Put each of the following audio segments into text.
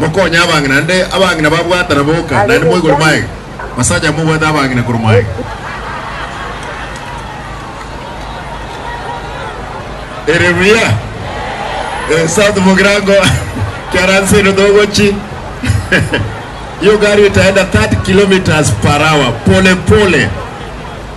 Mokonye abang'ina, naende abang'ina babwatana boka, naende moigore maega, basacha mobwate abang'ina korwa maega. Ere buya. Eh, sa tumokera ngo kiaransino togochi. Hiyo gari itaenda 30 kilometers per hour pole pole.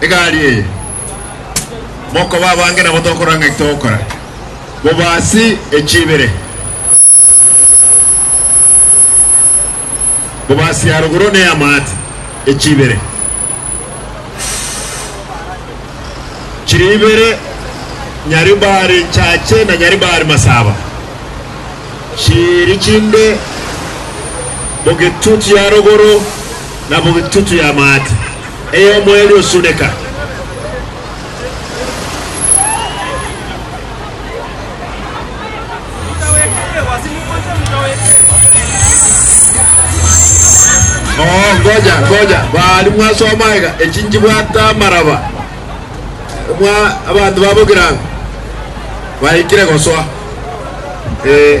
egari eye, mokoba abange nabo tokorora ng'aki togokora, bobasi echi ibere, bobasi ya rogoro ne y'amaate echi ibere, chiri ibere nyari mbare nchache na nyari mbare masaba, chiri chinde bogetutu ya rogoro na bogetutu y'amaate. Eye omoerio osuneka. Oo, ngoja, ngoja, baari mwasoma aiga, echi nchibwate amaraba. Mwa abanto ba Bogirango baikire gosoa. Ee.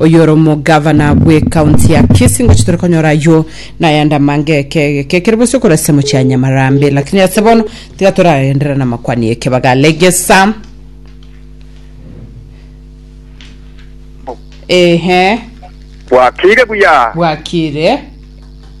Oyoromogavana bw'ecounty ya Kisii ngochi tore konyora aywo nayande amange ekege kekere bosi okorasisa mochie ya Nyamarambe lakini ase bono tiga toragenderera namakwani ekebaga Legesa Ehe. Bwakire buya. Bwakire.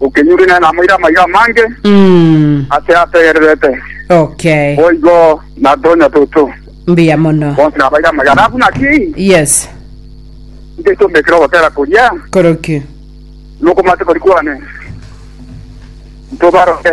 okenyure nere namoire amaiga amange Mm. ase ategererete. Okay. Boigo natonya toto. Mbuya mono. Bonsi nabaire amaiga. Alafu naki Yes. nche ntomekere ogotera koria Koroki. nokomate kori kwane. Ntobaroke.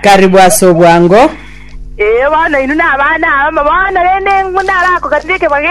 Karibu ase obwango. Ee, bono inwe nabana abamo bono, rende ng'o narakoganire ekebwaga eke?